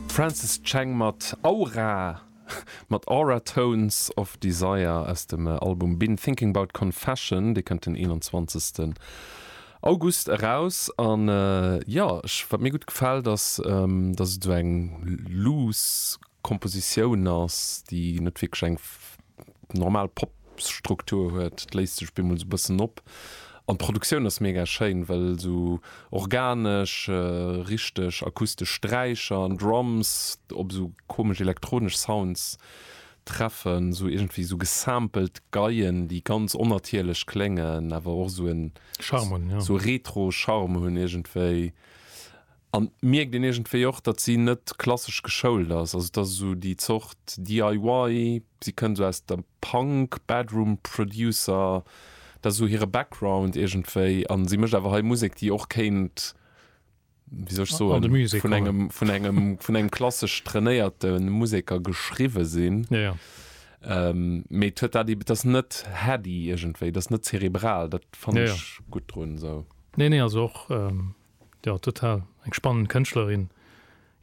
Francis Cheng mat Aura, mat Aura Tones of Desire aus dem Album Been Thinking About Confession. Dee kënnt den 21. August eraus. An jo, ech, wat mir gutt gefält ass, dass et esou eng loose Kompositioun ass, déi net wierklech eng normal Pop-Struktur huet, et léist sech bemol esou e bëssen op. An d'Produktioun ass mega schéin, well esou organesch, richteg akustesch Sträicher an Drums op esou komesch elektronesch Sounds treffen, esou iergendwéi esou gesampelt Geien, déi ganz onnatierlech kléngen, awer och esou en retro Charme hunn iergendwéi. An et mierkt een iergendwéi och, datt si net klassesch geschoult ass. Also et ass esou déi Zort DIY, si kënnt esou aus der Punk, Bedroom Producer, dat ass esou hire Background iergendwéi. A si mécht awer hei Musek, déi och kéint, wéi soll ech soen, vun engem, vun engem, vun engem klassesch trainéierte Museker geschriwwe sinn. Jo, jo. Mee et huet dat eeben, et ass net heady iergendwéi, et ass net zerebral, dat fannen ech gutt drun esou. Nee, nee, also och Jo total, eng spannend Kënschtlerin.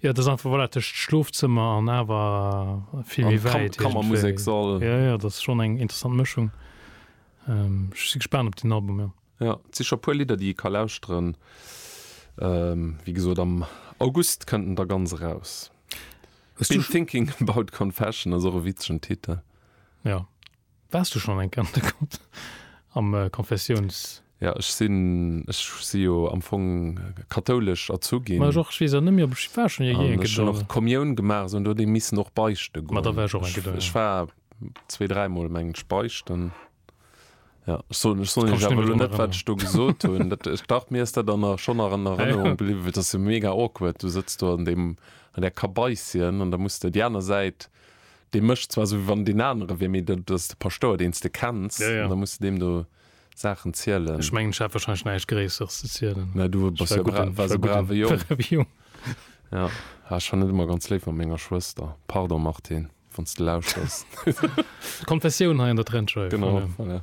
Jo et ass einfach voilà tëscht Schlofzëmmer an awer vill méi wäit iergendwéi. An Kammermuseksall. Jo jo, et ass schonn eng interessant Mëschung. Ech si gespaant op den Album, jo. Jo, et si scho puer Lidder déi ee ka lauschteren. Wéi gesot am August kënnt en da ganz eraus. Been thinking about confession ass och e witzegen Titel. Jo. Wars du schon eng Kéier an der Grotte am Konfessions? Ja ech sinn, ech si jo am Fong kathoulesch erzu ginn. Ma ech och, ech weess awer net méi op ech war schon je eng Kéier do. An ech hunn och d'Komioun gemaach esou, an do huet ee missen och beichte goen. Ma da war ech och eng Kéier do, ja. Ech war zwee, dräi Mol mengen ech beichten, ja. Ech soen, ech soen iech awer elo net wat ech do gesot hunn, dat, dach mir ass dat an der, schon an Erënnerung bliwwen, well dat ass jo mega awkward, du sëtz do an deem, an där Kabaissien an da muss de déi aner Säit, dee mécht zwar esou, wéi wann deen anere wier, mee dat ass de Paschtouer, deen s de kenns. Ja, ja. An da muss de deem do Saachen zielen. Ech mengen, ech hat wahrscheinlech näischt Gréisseres ze zielen. Mä du bass jo bra waars e brave Jong. Jong. Ja. Ah, ech war net ëmmer ganz léif mat menger Schwëster. Pardon, Martine, wann s de lauschters. D'Konfessioun hei an der Trendscheiw. Genau, voilà.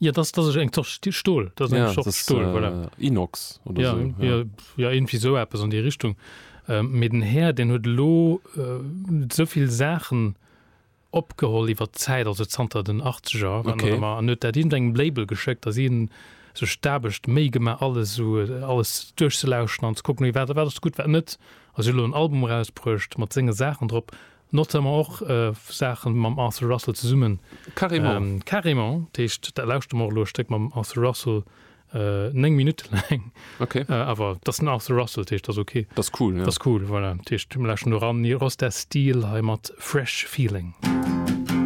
Ja, das, das ist eng Sorte Sti- Stol. Das ist eng Ja, Sorte das ist, Stol, voilà. äh, Inox oder ja, so. ja, ja, irgendwie so etwas an die Richtung. Ähm, mir den Herr, den huet lo äh, so viel Sachen opgeholt iwwer Zeit, also zanter den 80er, wann Okay. er immer, an huet dat in engem Label geschickt, dass ihn so stabecht méi gemacht, alles so, äh, alles durchzulauschen an zu gucken, wie wat, wat ist gut, wat net. Also lo ein Album rausbrücht, mat senge Sachen drop, Notamment och Saachen mam Arthur Russell zesummen. Carrément. Carrément. Dat heescht, da lauschte mer och elo e Stéck mam Arthur Russell, 9 Minutte laang. Ok. Awer et ass den Arthur Russell, dat heescht, et ass ok. Dat ass cool, jo. Dat ass cool, voilà. Dat heescht, mir lauschten elo eran Rostas Steel hei mat Fresh Feeling.